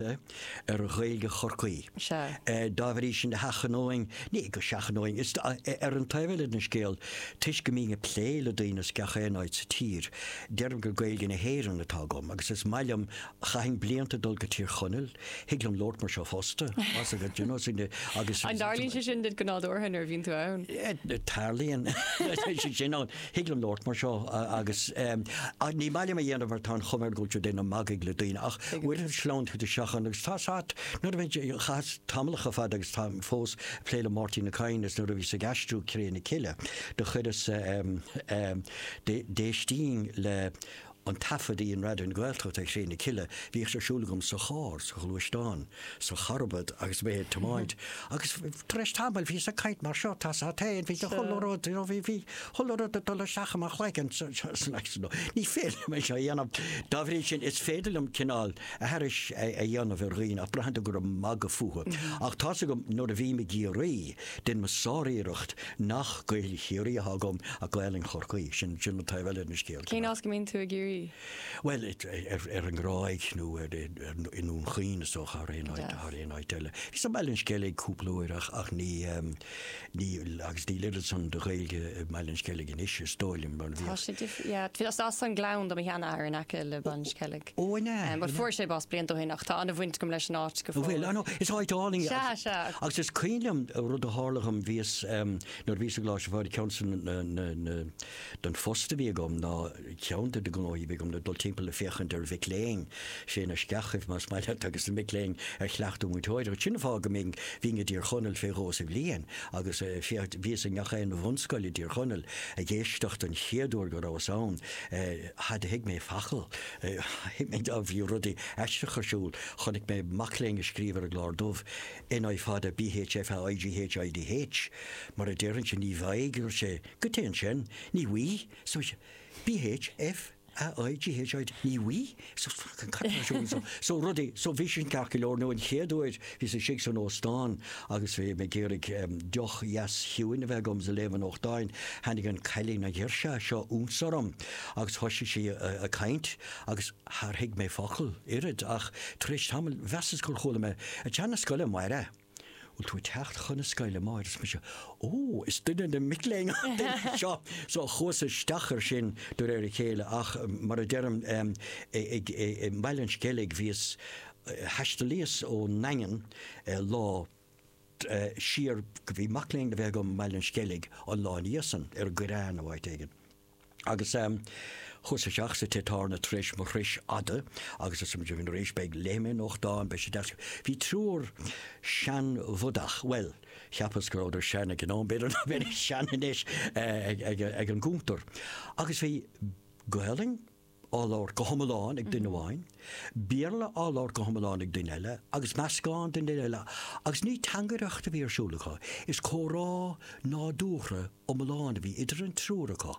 ar Ghaeilge Chorcaí. Dá bhrí sin a sheachnóinn, ní go seachnóinn, is ar an taobh eile den scéal, toisc go mbínn ag plé le daoine as gach aon áit sa tír, deirim gur Gaeilge na hÉireann atá agam agus is maith liom, chaitheas blianta ag dul go Tír Chonaill, thig liom labhairt mar seo fosta, más gá, you know, agus. An dtarlaíonn sé sin duit go nádúrtha nuair a bhíonn tú ann? Tarlaíonn, sin ann. Thig liom labhairt mar seo agus ní maith liom é a dhéanamh mar tá an chuma air go bhfuil tú ag déanamh magaidh le daoine ach uaireanta sleamhnaíonn tú isteach ann agus tá's a't nuair a bhí, chaitheas tamallacha fada agus tá fós ag plé le Máirtín Ó Cadhain is nuair a bhíos ag aistriú Cré na Cille do chuireas, d'éistínn le an taifead a dhein Raidió na Gaeltachta ar Chré na Cille, bhíodh sé ar siúl agam sa charr, sa ghluaisteán, sa charbad agus mé ag tiomáint agus tar éis tamaill bhíos ag caint mar seo, tá's a't héin, bhí chuile rud, you know, bhí, bhí chuile rud ag dul isteach i mo chloigeann so, so that's no, ní féidir liom é seo a dhéanamh. Dá bhrí sin, is féidir liom cineál aithris a dhéanamh ar dhaoine ach braitheann tú gur ag magadh fúthu. Ach tá's agam nuair a bhím i gCiarraí, deinim mo shár-iarracht nach Gaeilg Chiarraí atá agam ach Gaolainn Chorcaí. Sin an taobh eile den scéal. Cén áit go mbíonn tú i gCiarraí? Bhuel, ar an nGráig nó i nDún Chaoin is dócha thar aon áit eile. Bhíos i mBaile an Sceilg cúpla uair ach agus níl oiread san de Ghaeilge i mBaile an Sceilg anois is dóigh liom. Tá sé difriúil. Is as an nGleann do mo shean-athair in aice le Baile an Sceilg. Ó, an ea? Bhuel, fuair sé bás blianta ó shin ach tá an-bhaint agam leis an áit go fóill. Bhuel, anyway, is áit álainn í. Sea, sea. Agus is cuimhin liom rud a tharla dhom, bhíos, nuair a bhíos i gColáiste Phádraig, ceann den phost a bhí agam ná, ceann de na gnóthaí a bhí agam ná dul timpeall ag féachaint ar mhic léinn, sea, na sceachaibh más maith leat, agus na mic léinn ar chleachtadh múinteoireachta. Sin an fáth go mbínn, bhínn i dTír Chonaill fé dhó sa bhliain agus, sea, bhíos i ngach aon bhunscoil i dTír Chonaill ag éisteacht an chéad uair go rabhas ann, char thuig mé focal thuig mé dá bhí rudaí aisteach ar siúl chonaic mé mac léinn ag scríobh ar an gclár dubh NI fada BH FA IGH IDH mar a déarfainnse ní bhfaighidh dúirt sé cad é ansin ní bhí so BH FA IGH ID ní bhí so so rudaí so bhí sin ceart go leor nó an chéad uair Bhíos istigh san óstán agus bhí mé ag iarraidh deoch dheas chiúin a bheith agam is ag léamh an nuachtáin. Tháinig an cailín, an ghirseach seo ionsorm agus thoisigh sí ag caint agus char thuig mé focal, oiread ach tar éis tamaill mheasas gur chuala mé, 'ag teacht 'na scoile amárach! Bhfuil tú ag teacht chun na scoile, amárach? Arsa mise, Ó, is duine de na mic léinn an duine seo! So chuas isteach ar sin de réir a chéile ach mar a deirim i mBaile an Sceilg bhíos, Thaistealaíos ón nDaingean lá siar, bhí mac léinn a bheith agam i mBaile an Sceilg an lá ina dhiaidh san, ar an gCoireán nó áit éigin. Agus chuas isteach sa Tigh-Tábhairne tar éis mo thurais fhada agus arsa muid ina éis beidh, léifidh mé nuachtán, beidh sé deas. Bhí triúr seanbhodach, bhuel, cheapas go rabhadar sean ag an am, b'fhéidir nach mbeidís sean anois, ag an gcuntar. Agus bhí Gaolainn á labhairt go hiomlán ag duine amháin, Béarla á labhairt go hiomlán ag duine eile, agus meascán den duine eile, agus ní teangaireacht a bhí ar siúl acu, is comhrá nádúrtha iomlán a bhí idir an triúr acu,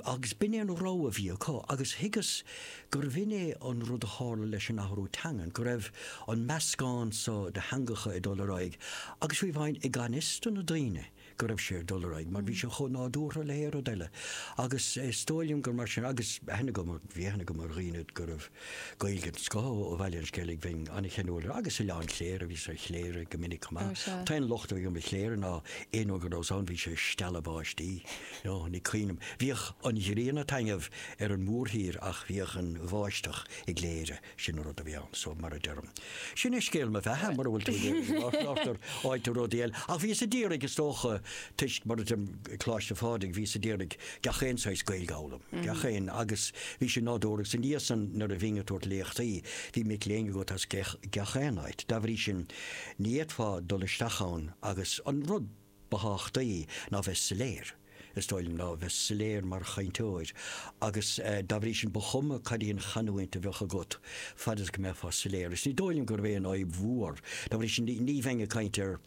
agus b'in é an rogha a bhí acu, agus thuigeas gurbh in é an rud a tharla leis an athrú teangan, go raibh an meascán so de theangacha ag dul ar aghaidh, agus fiú amháin i ngan fhios do na daoine, go raibh sé ag dul ar aghaidh mar bhí sé chomh nádúrtha le haon rud eile agus is dóigh liom gur mar sin agus aithne agam, bhí aithne agam ar dhaoine go raibh Gaeilge den scoth ó Bhaile an Sceilg, bhínn an-cheanúil air agus Oileán Chléire, bhíos ar Chléire go minic chomh maith. An t-aon locht a bhí agam ar Chléire ná aon uair go rabhas ann bhí sé ag stealladh báistí, ó, ní cuimhin liom, bhíodh an ghrian ag taitneamh ar an mhórthír ach bhíodh an bháisteach i gCléire. Sin an rud a bhí ann, so mar a deirim. Sin é scéal mo bheatha, mura bhfuil tú ag iarraidh go láithreochtar fháil tú rudaí eile. Ach bhíos ag iarraidh, is dócha, toisc, mar a deirim, Coláiste Phádraig, bhíos ag iarraidh gach aon saghas Gaeilge a fhoghlaim, gach aon, agus bhí sin nádúrtha, agus ina dhiaidh san, nuair a bhínn ag tabhairt léachtaí, bhí mic léinn agat as gach aon áit. Dá bhrí sin, ní fhéadfá dul isteach ann agus an rud. ba thábhachtaí ná bheith soiléir, is dóigh liom, ná bheith soiléir mar chainteoir agus dá bhrí sin ba chuma cad í an chanúint a bheadh agat fad is go mbeifeá soiléir agus ní dóigh liom gurbh é an fhadhb mhór, dá bhrí sin ní bheinn ag caint ar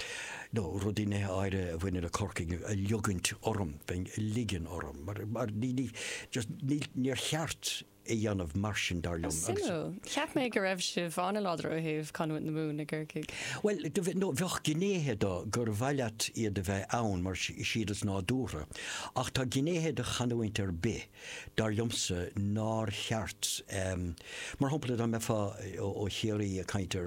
nó rudaí, nithe áirithe a bhaineann le Corcaigh ag ligint orm, bheinn ag ligean orm mar ní, just níl, níor cheart. a dhéanamh mar sin, dar liom. Suimiúil. Cheap mé go raibh sibh an-láidir ó thaobh chanúint na Mumhan i gCorcaigh. Bhuel, no, bheadh gnéithe de gur mhaith leat iad a bheith ann mar is iad is nádúrtha, ach tá gnéithe de chanúint ar bith, dar liomsa, nár cheart, mar shampla dá mbeifeá ó Chiarraí ag caint ar.